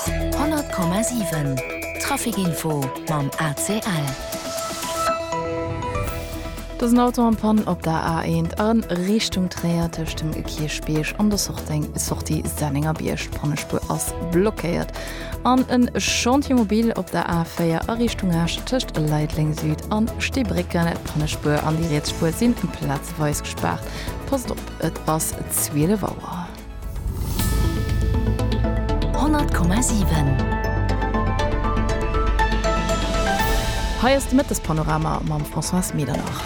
100,7 Trafic Info mam ACL. Et ass en Auto am Pann op der A1 a Richtung Tréier tëscht dem Kierchbierg an der Sortie Sennengerbierg. D'Pannespuer ass blockéiert. An e Chantier mobile op der A4 a Richtung Esch tëscht Leideleng Süd an Steebrécken. D'Pannespuer an déi riets Spuer si plazeweis gespaart. Passt op, et ass 12 Auer. Hei ass de Mëttespanorama mam Françoise Medernach.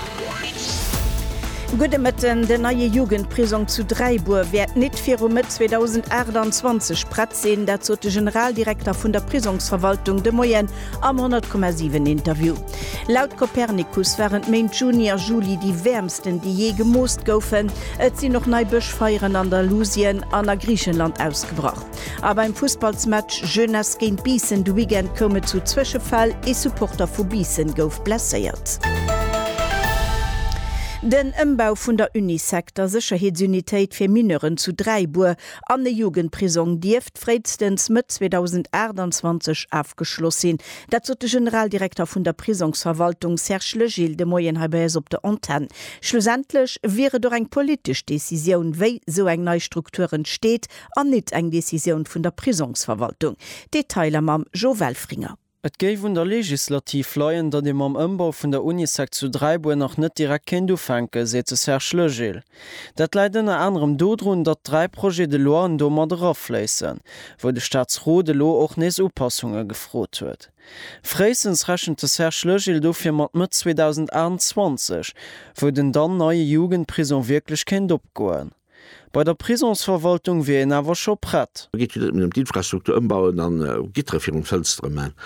Gudde Mëtten, Den neie Jugendprisong zu Dräibuer wäert nit viru Mëtt 2028 prett sinn. Dat sot de Generaldirekter vun der Prisongsverwaltung de Moien Am 100,7 Interview. Laut Copernicus waren d'Méint Juni a Juli déi wäermsten, déi jee gemoost goufen. Et sinn och nei Bëschfeieren an Andalusien an a Griichenland ausgebrach. A beim Fussballsmatch Jeunesse géint Biissen de Weekend koum et zu Zwëschefäll, ee Supporter vu Biissen gouf blesséiert. Den Ëmbau vun der Unisec, der Sécherheetsunitéit fir Mineuren zu Dräibuer, an e Jugendprisong dierft, wäert fréistens Mëtt 2028 afgeschloss sinn. Dat sot de Generaldirekter vun der Prisongsverwaltung Serge Legil de Moien hei bei eis op der Antenn. Schlussendlech wier et och eng politesch Decisioun, wéi sou eng nei Struktur entsteet an nit eng Decisioun vun der Prisongsverwaltung. Detailer mam Jo Welfringer. Et géif un der Legislativ leien, datt ee mam Ëmbau vun der Unisec zu Dräibuer nach net direkt kéint ufänken, seet de Serge Legil. Dat läit ënner anerem dodrun, datt dräi Projets de loien do mat erafléissen, wou de Staatsrot elo och nees Upassunge gefrot huet. Fréistens rechent de Serge Legil dofir mat Mëtt 2028, wou den dann neie Jugendprisong wierklech kéint opgoen. Bei der Prisonsverwaltung wier een awer scho prett. Do geet jo net nëmmen ëm d'Infrastruktur ëmbauen a Gittere virum Fënstere man.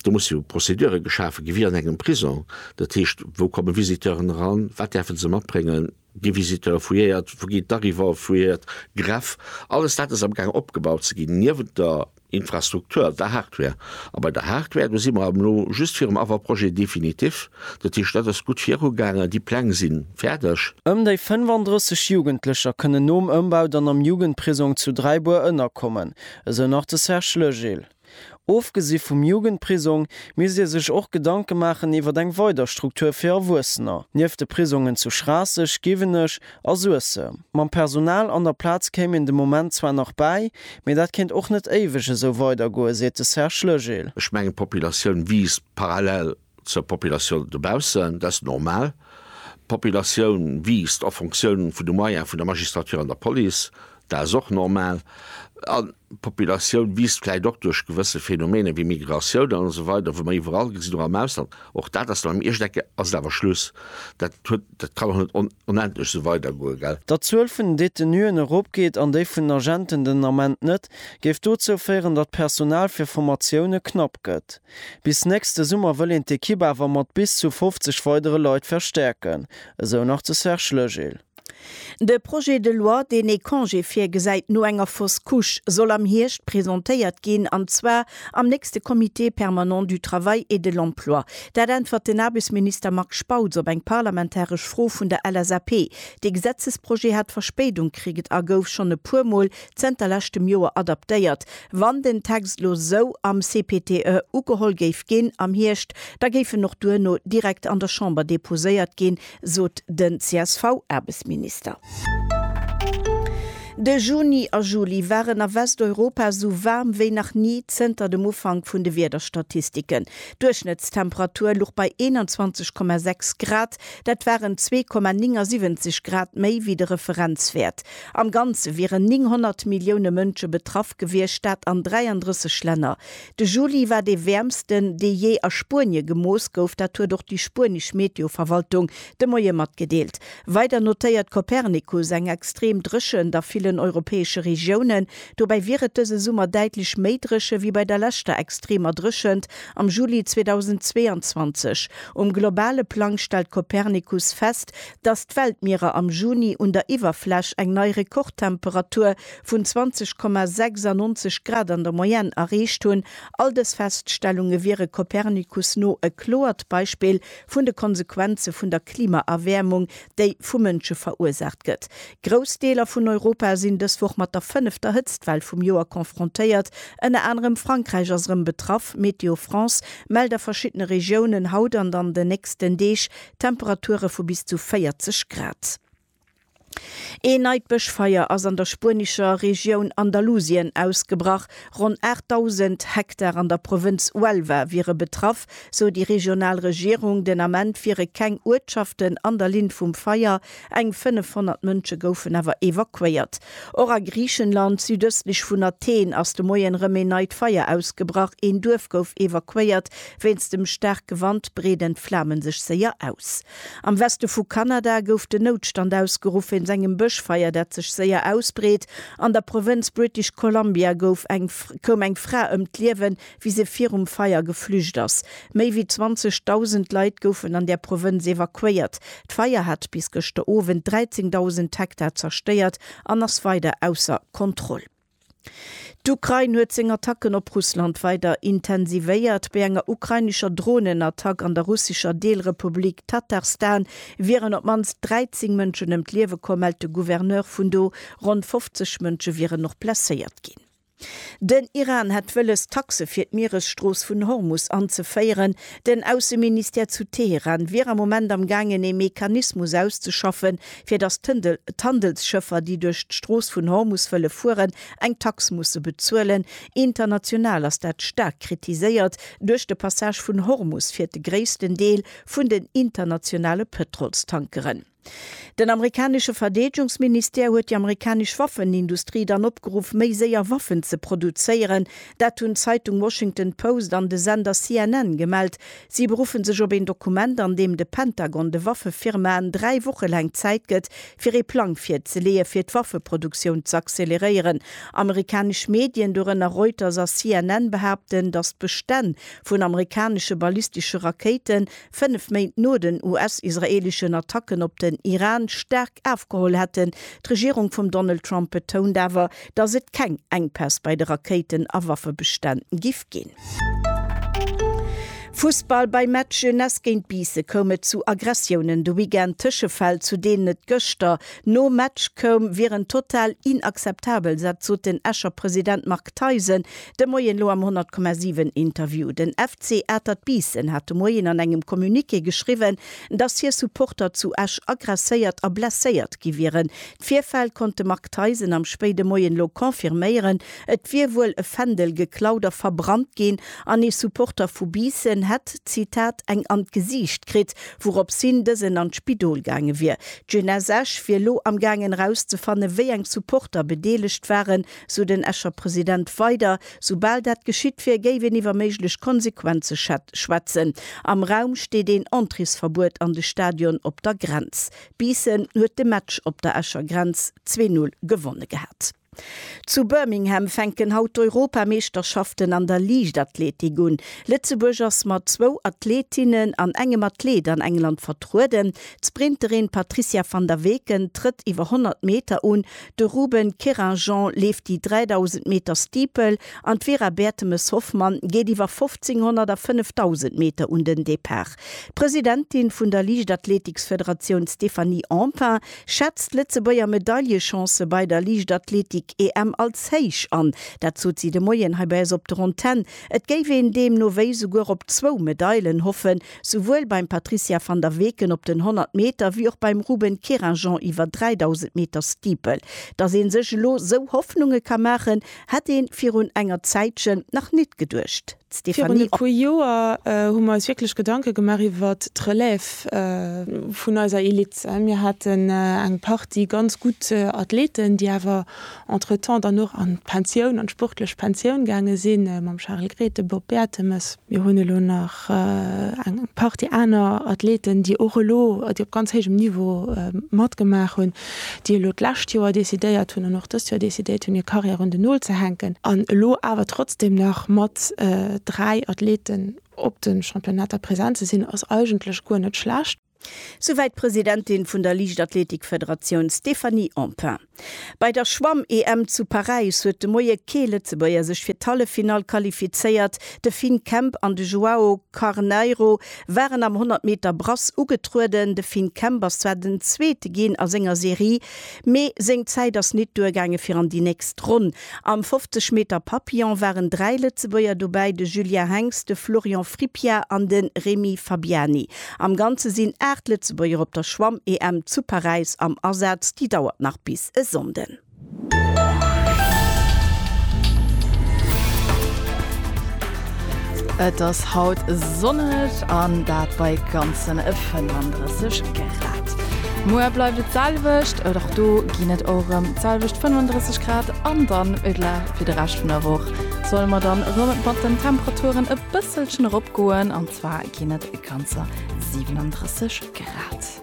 Do musse jo Prozedure geschafe gi wéi an engem Prisong. Dat heescht, wou komme Visiteuren eran, wat däerfe se matbréngen, gi Visiteure fouilléiert, wou geet d'Arrivée fouilléiert, Greff. Alles dat ass am gaang opgebaut ze ginn. Niewent der. Infrastruktur war Hardware. A bei der Hardware, do si mer am lo just virum Avant-projet définitif. Dat heescht, dat ass gutt virugaangen, déi Pläng si fäerdeg. Ëm déi 35 Jugendlecher kënnen nom Ëmbau dann am Jugendprisong zu Dräibuer ënnerkommen, esou nach de Serge Legil. Ofgesi vum Jugendprisong misst ee sech och Gedanke maachen iwwer eng weider Struktur fir Erwuessener. Nieft de Prisongen zu Schraasseg, Giwenech, A Suessem. Mam Personal an der Plaz kéim een de Moment zwar nach bäi, mee dat kéint och net éiweg esou weidergoen, seet de Serge Legil. Ech mengen, d'Populatioun wiisst parallel zur Populatioun dobaussen, dat ass normal. D'Populatioun wiisst a Fonctioun vun de Moyene vun der Magistrature an der Police, dat ass och normal. D'Populatioun wiisst vläicht och duerch gewësse Phenomene wéi Migratioun an esou weider, wou mer iwwerall gesinn, och am Ausland. Och dat ass beim Iechtecke ass et awer Schluss. Dat huet, dat kann och net onendlech esou weidergoen, gell? Datt d'Zuel vun den Detenuen eropgeet an déi vun den Agenten den Ament net, géif dozou féieren, datt d'Personal fir Formatioune knapp gëtt. Bis nächste Summer wëll een d'Ekipp awer mat bis zu 50 weidere Leit verstäerken, esou nach de Serge Legil. De Projet de loi, deen ee Congé virgesäit no enger Fausse Couche, soll am Hierscht presentéiert ginn, an zwar am nächste Comité permanent du travail et de l'emploi. Dat äntwert den Aarbechtsminister Marc Spautz op eng parlamentaresch Fro vun der LSAP. Dee Gesetzesprojet hat Verspéidung kriget a gouf schonn e puer Mol zënter leschtem Joer adaptéiert. Wann den Text elo esou am CPTE ugeholl géif ginn am Hierscht, da géif en och duerno direkt an der Chamber deposéiert ginn, sot den CSV-Aarbechtsminister. De Juni a Juli waren a Westeuropa esou waarm wéi nach ni zënter dem Ufank vun de Wiederstatistiken. D'Duerchschnëttstemperatur luch bei 21,6 Grad, dat waren 2,79 Grad méi wéi de Referenzwäert. Am Ganze wieren 900 Millioune Mënsche betraff gewiescht, dat an 33 Länner. De Juli war dee wäermsten, dee jee a Spuenie gemooss gouf. Dat huet och déi spuenesch Meteoverwaltung de Moie matgedeelt. Weider notéiert Copernicus eng extrem Dréchent a villen europäesche Regiounen. Dobäi wier et dëse Summer däitlech méi dréche wéi bei der leschter extremer Dréchent am Juli 2022. Um globale Plang stellt Copernicus fest, datt d'Weltmierer am Juni un der Iwwerfläch eng nei Rekordtemperatur vun 20,96 Grad an der Moyenne erreecht hunn. All dës Feststellunge wiere Copernicus no e kloert Beispill vun de Konsequenze vun der Klimaerwäermung, déi vu Mënsche verursaacht gëtt. Grouss Deeler vun Europa sinn dës Woch mat der fënnefter Hëtztwell vum Joer confrontéiert. Ënner anerem Frankräich ass erëm betraff. Météo France mellt a verschiddene Regiounen haut an an den nächsten Deeg Temperature vu bis zu 40 Grad. Een neit Bëschfeier ass an der spuenescher Regioun Andalusien ausgebrach. Ronn 8.000 Hektar an der Provënz Huelva wiere betraff, sou déi regional Regierung. Den Ament wiere keng Uertschaften an der Linn vum Feier, eng 500 Mënsche goufen awer evakuéiert. Och a Griichenland, südëstlech vun Athen, ass de Moien erëm een neit Feier ausgebrach. Een Duerf gouf evakuéiert. Wéinst dem staarke Wand breeden d'Flame sech séier aus. Am Weste vu Kanada gouf den Noutstand ausgeruff wéinst engem Bëschfeier, dat sech séier ausbreet. An der Provënz British Columbia gouf eng koum eng Fra ëm d'Liewen, wéi se virum Feier geflücht ass. Méi wéi 20.000 Leit goufen an där Provënz evakuéiert. D'Feier hat bis gëschter Owend 13.000 Hektar zerstéiert an ass weider ausser Kontroll. D'Ukrain huet seng Attacken op Russland weider intensivéiert. Bei enger ukrainescher Dronenattack an der russescher Deelrepublik Tatarstan wieren op d'mannst 13 Mënschen ëm d'Liewe komm, mellt de Gouverneur vun do. Ronn 50 Mënsche wieren och blesséiert ginn. Den Iran hätt wëlles, Taxe fir d'Mieresstrooss vun Hormus anzeféieren. Den Ausseministère zu Teheran wier am Moment am gaangen, ee Mechanismus auszeschaffen, fir datt d'Handelsschëffer, déi duerch d'Strooss vun Hormus wëlle fueren, eng Tax musse bezuelen. International ass dat staark kritiséiert. Duerch de Passage vun Hormus fiert de gréissten Deel vun den internationale Pëtrolstankeren. Den amerikanesche Verdeedegungsministère huet déi amerikanesch Waffenindustrie dann opgeruff, méi séier Waffen ze produzéieren. Dat hunn d'Zeitung Washington Post an de Sender CNN gemellt. Si beruffen sech op een Dokument, an deem de Pentagon de Waffefirmaen dräi Woche laang Zäit gëtt, fir ee Plang virzeleeë fir d'Waffeproduktioun z'acceleréieren. Amerikanesch Medien, dorënner Reuters a CNN, behaapten, datt d'Bestänn vun amerikanesche ballistesche Rakéiten, fënnef Méint no den US-israeeleschen Attacken op den Iran, staark afgeholl hätten. D'Regierung vum Donald Trump betount awer, dass et keng Enkpäss bei de Rakéiten a Waffebestänn giff ginn. Fussball, Beim Match Jeunesse géint Biisse koum et zu Aggressiounen de Weekend. Tëschefäll, zu deenen et gëschter nom Match koum, wieren total inakzeptabel, dat sot den Escher President Marc Theisen de Moien elo am 100,7 Interview. Den FC Atert Biissen hat de Moien an engem Communiqué geschriwwen, dass hir Supporter zu Esch aggresséiert a blesséiert gi wieren. D'Virfäll konnt de Marc Theisen am spéide Moien elo confirméieren. Et wier wuel e Fändel geklaut a verbrannt ginn an ee Supporter vu Biissen hätt, Zitat, eng an d'Gesiicht kritt, wourops hin dësen an d'Spidol gaange wier. D'Jeunesse Esch wier elo am gaangen erauszefanne wéi eng Supporter bedeelegt waren, sou den Escher President weider. Soubal dat geschitt wier, géif een iwwer méiglech Konsequenze schwätzen. Am Raum steet een Entréesverbuet an de Stadion op der Grenz. Biissen huet de Match op der Escher Grenz zwee Null gewonne gehat. Zu Birmingham fänken haut d'Europameeschterschaften an der Liichtathletik un. Lëtzebuerg ass mat zwou Athleetinnen an engem Athleet an England vertrueden. D'Sprinterin Patricia van der Weken trëtt iwwer 100 Meter un, de Ruben Querinjean leeft déi 3.000 Meter Steeple an d'Vera Bertemes-Hoffmann geet iwwer 1.500 a 5.000 Meter un den Depart. D'Presidentin vun der Liichtathleetiksfederatioun Stéphanie Empain schätzt d'Lëtzebuerger Medaillechancë bei der Liichtathleetik-EM als héich an. Dat sot si de Moien hei bei eis op der Antenn. Et géif een deemno wéi souguer op zwou Medailen hoffen, souwuel beim Patricia van der Weken op den 100 Meter wéi och beim Ruben Querinjean iwwer 3.000 Meter Steeple. Datt ee sech elo esou Hoffnunge ka maachen, hätt ee virun enger Zäitchen nach nit geduecht. Virun e puer Joer hu mer eis wierklech Gedanke gemaach iwwer d'Relève vun eiser Elite. Mir haten eng Partie ganz gutt Athleten, déi awer entretemps dann och an d'Pensioun, an d'sportlech Pensioun gaange sinn, mam Charel Gret, dem Bob Bertemes. Mir hunn elo nach eng Partie aner Athleten, déi och elo, déi op ganz héijem Niveau matgemaach hunn. déi elo d'lescht Joer decidéiert hunn an och dëst Joer decidéiert hunn, hir Karriär un den Nol ze hänken an elo awer trotzdeem nach mat dräi Athleten op de Championnater present ze sinn, ass eigentlech guer net schlecht. Souwäit d'Presidentin vun der Liichtathletikfederatioun Stéphanie Empain. Bei der Schwamm-EM zu Paräis huet de Moie kee Lëtzebuerger sech fir d'Halleffinall qualifizéiert. De Finn Kemp an de Joao Carneiro waren am 100 Meter Brass ugetrueden. De Finn Kemp ass zwar den Zweete ginn a senger Serie, mee seng Zäit ass nit duergaange fir an déi nächst Ronn. Am 50 Meter Papillon waren dräi Lëtzebuerger dobäi, de Julien Henx, de Florian Fripia an de Remy Fabiani. Am Ganze sinn aacht Lëtzebuerger op der Schwamm-EM zu Paräis am Asaz, déi dauert nach bis e Sonnden. Et ass haut sonneg an dat bei ganzen 35 Grad. Muer bleift et d'selwecht, et och do ginn et och erëm d'selwecht 35 Grad an dann fir de Rescht vun der Woch solle mer dann erëm mat den Temperaturen e bësselchen eropgoen an zwar ginn et ganzer 37 Grad.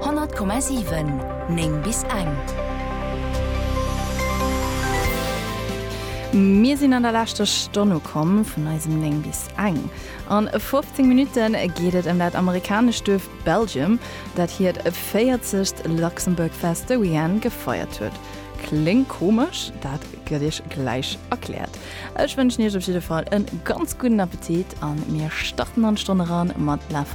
100,7 9 bis eng. Mir sinn an der leschter Stonn ukomm vun eisem 9 bis eng. An 15 Minutten geet et ëm dat amerikanescht Duerf Belgium, dat hiert 40 Luxembourg Fest de Weekend gefeiert huet. Kléngt komesch? Dat gëtt iech gläich erkläert. Ech wënschen iech op jidde Fall e ganz gudden Appetit a mir starten an d'Stonn eran mat La.